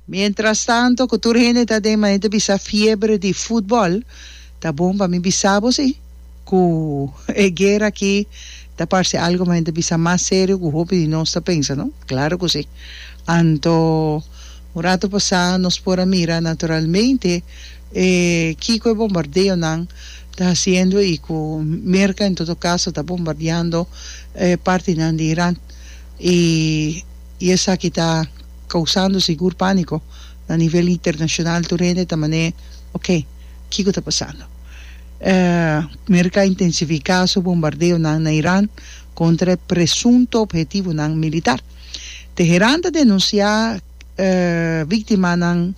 Mientrastanto ku tur hende ta den manera ta bisa fiebre di futbòl, ta bon pa mi bisa bo si ku e guera aki ta parse algu manera ta bisa mas serio ku hopi di nos ta pensa, no? Klaru ku si. Anto un ratu pasá nos por a mira naturalmente e kiko e bombardeonan ta hasiendo i ku Merka en todo kaso ta bombardiando e partinan di Iran i I esaki ta kousando sigur pániko na nivel internashonal tur hende ta man'é ok kiko ta pasando. Merka intensifiká su bombardeonan na Iran kontra e presunto ophetivonan militar. Teheran ta denunsiá víktimanan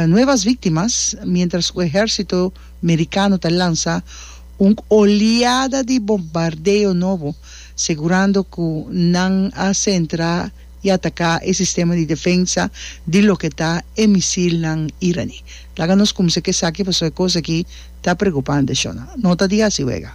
nuevas víktimas miéntras ku ehérsito merikano ta lansa Un oliada di bombardeo nobo segurando cu nan a centra y ataca e sistema di defensa di loke ta e misilnan iraní. Laga nos cumsa cu esaki pasobra e cos aki ta preocupante, Shona. No ta di haci wega.